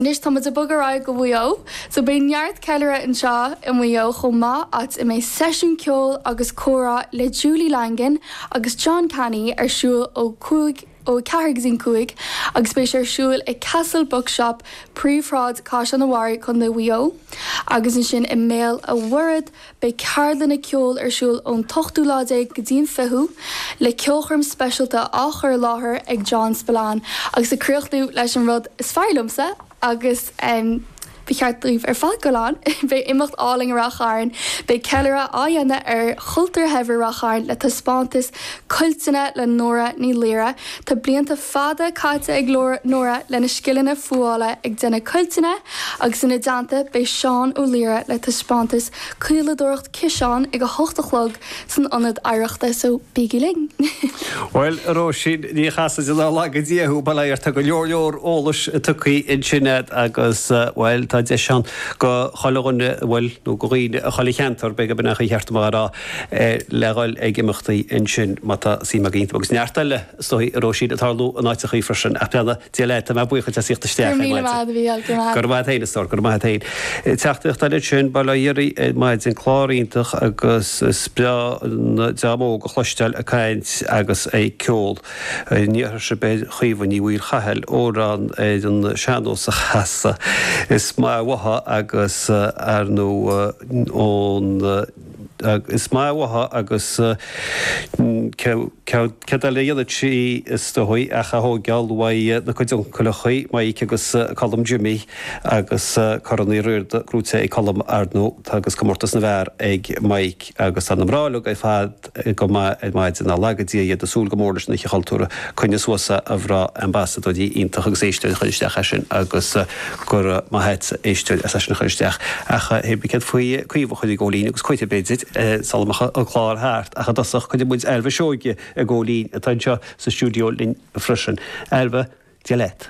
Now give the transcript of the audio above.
Anois tá muid ag bogadh ar aghaidh go Mhaigh Eo so beidh neart ceiliúradh anseo i Maigh Eo chomh maith áit a mbeidh seisiún ceoil agus comhrá le Julie Langan agus John Canny ar siúl ó 5 ó 4-5 agus beidh sé ar siúl i Castle Bookshop, Príomhshráid Chaisleán an Bharraigh, Co. Mhaigh Eo agus ansin i mBéal a' Mhuirthead. Beidh ceardlanna ceoil ar siúl ón t-ochtú lá déag go dtí'n fichiú, le ceolchoirm speisialta á chur i láthair ag John Spillane agus ag críochnú leis an rud is fearr liomsa agus ba cheart daoibh ar fad goil ann, beidh imeacht álainn i Ráth Chairn! Beidh ceiliúradh á dhéanamh ar chultúr shaibhir Ráth Chairn le taispeántas cuilteanna le Nóra Ní Laoire Tá blianta fada caite ag Nóra lena scileanna fuála ag déanamh cuilteanna agus ina dteannta beidh Seán Ó Laoire le taispeántas caoladóireacht ciseán ag 8 a chlog san Ionad Oidhreachta so bígí linn! Bhuel, a Róisín, Ní Chasaide, ná laga Dia thú, bail air, tá go leor leor eolais tugtha ansin agat agus, bhuel, tá deis ann go chuile dhuine, bhuel, nó go dhaoine, as chuile cheantar, beidh, b'in é ba cheart dom a rá. le ghoil ag imeachtaí ansin, má tá suim acu iontu. Agus neart eile, is dóigh, a Róisín, ag tarlú in áiteachaí freisin. Ach beannacht Dé leat, tá mé buíoch díot as a thíocht isteach ar maidin. Go raibh míle maith agat. Go raibh maith agat féin, a stór. Go raibh maith agat féin. Teachtaireacht eile ansin, bail ó Dhia oraibh ar maidin, clár iontach agus is breá an dream óg a chloisteáil ag caint agus ag ceol. An iarrfadh sibh ar Chaoimhe Ní Mhaoil Chathail amhrán ar an sean-nós a chasadh. Is maith uaithi agus ar ndóigh ón. Is maith uaithi agus céard eile a dhéanfadh sí, is dóigh, ach a thóigeáil óna cuid uncaileachaí, Maidhc agus Colm Jimí, agus Corn Uí Riada gnóthaithe ag Colm ar ndóigh agus comórtas na bhfear ag Maidhc agus tá na mná uilig ar fad go maith ar maidin, ná laga Dia iad, ag súil go mór leis an Oíche Chultúrtha, coinnigh suas an bhratach. Ambasadóirí iontach agus éisteoir a chuir isteach é sin agus. go raibh maith agat a éisteoir as é sin a chur isteach, ach hé bith céard faoi Caoimhe a chur ag gabháil fhoinn agus cuirfidh, b'fhéidir, sula mbeidh an clár thart, ach i dtosach cuirfidh muid Ailbhe Seoighe ag gabháil fhoinn, atá anseo sa stiúideo linn freisin. Ailbhe, Dia leat.